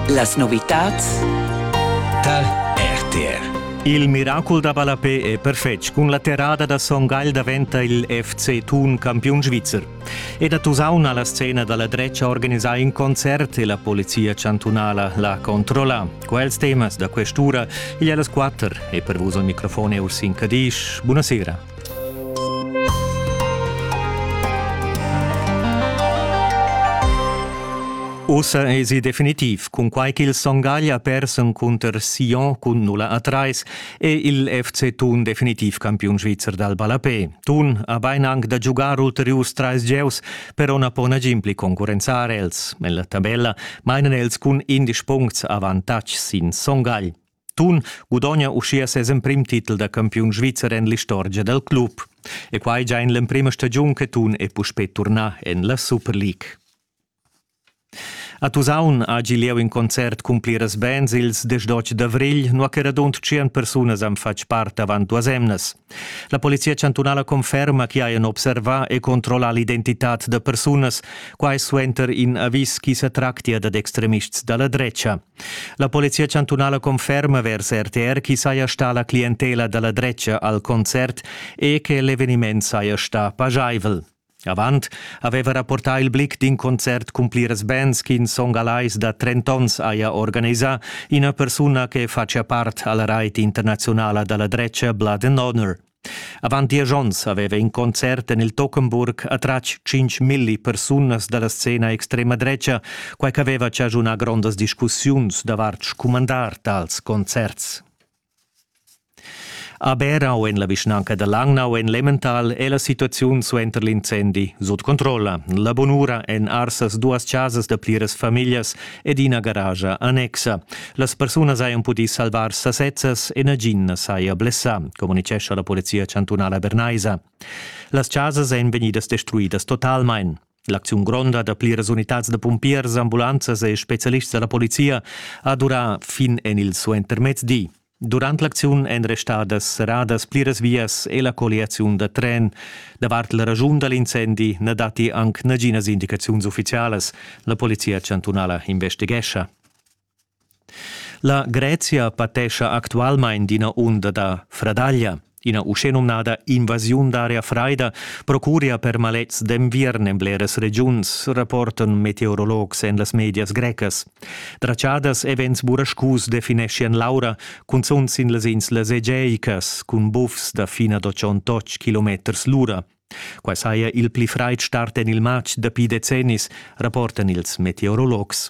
Las novitads tar RTR. Il miracol da ballapé è perfetg. Cun la terrada da Son Gagl daventa il FC Thun campiun svizzer. Ed a Tusaun ha la scena dalla dretga organisà in concert e la polizia chantunala l'ha controllà. Quels temas da quest'ura igl a las quatter e per vus il microfon è Ursin Cadisch. Buonasera. Ussa esi definitiv, cunquai ch'il Songaglia persen cunter Sion cun 0 a 3 è il FC Thun definitiv campiun svizzer dal ballapé. Thun ha bain anc da giugar ulteriurs trais gieus, però na pon nagin pli concurrenzar els. En la tabella mainan els cun indesch puncts avantatg sin Songagl. Tun gudogna uschia ses emprim titel da campiun svizzer en l'istorgia dal club. E quai già en l'emprima stagiun che Tun è puspè turnà en la Super League. A Tusaun ha gi lieu in concert cun pliras bands ils 18 d'avrigl, nua che radund 100 persunas han fatg part avant duas emnas. La polizia chantunala conferma che hajan observà e controllà l'identitad da persunas, quai suenter in avis ch'i sa tractia dad extremists da la drecha. La polizia chantunala conferma vers RTR chi saja sta la clientela da la dretga al concert e che l'eveniment saja sta pajaivel. Avant aveva rapportà il blick d'in concert cun pliras bands ch'in song alais da 30 onns haja organisà ina persuna che facia part alla rait internazionala da la dretga Blood and Honor. Avant diesch onns aveva in concert en il Tockenburg attratg tschintg milli persunas da la scena extrema dretga, quai ch'aveva chaschunà grondas discussiuns davart scumandar tals concerts. A Berau en la vischnanca da Langnau en Lemmental è la situaziun suenter l'incendi sut controlla. La bunura en Arsas duas chasas da pliras famiglias ed ina garagia annexa. Las persunas hajan pudì salvar sasezzas e nagin na saja blessà, communitgescha la polizia chantunala bernaisa. Las chasas èn vegnidas destruidas totalmain. L'acziun gronda da pliras unitads da pumpiers, ambulanzas e spezialists da la polizia ha durà fin en il suentermezdi. Durant l'acziun èn restadas serradas pliras vias e la colliaziun da tren. Davart la raschun da l'incendi na datti anc naginas indicaziuns uffizialas. La polizia chantunala investighescha. La Grezia patescha actualmain d'ina unda da fradaglia. Ina uschenumnada invasiun d'aria fraida procuria per malets d'enviern en bleras regiuns, rapportan meteorologs en las medias grecas. Tratschadas e vents burascus defineschian l'aura, cunzunt sin las inslas egeicas, cun bufs da fina da 108 km l'ura. Quai saja il pli fraid start en il matg dapi decennis, rapportan ils meteorologs.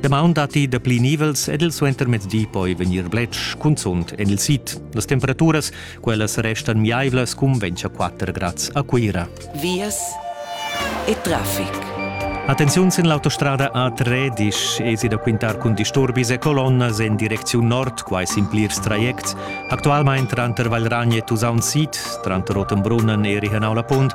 Damaun datti dapli nivels ed il suentermezdi poi vegnir bletsch, cunzunt en il sid. Las temperaturas, quellas restan miaivlas cun 24 grads a Cuira. Vias e traffic. Attenziun sin l'autostrada A3 esi da quintar cun disturbis e colonnas en direcziun nord, quai sin plirs trajects. Actualmain tranter Valragn e Tusaun Sid, tranter Rotenbrunnen e Rihenau la Punt,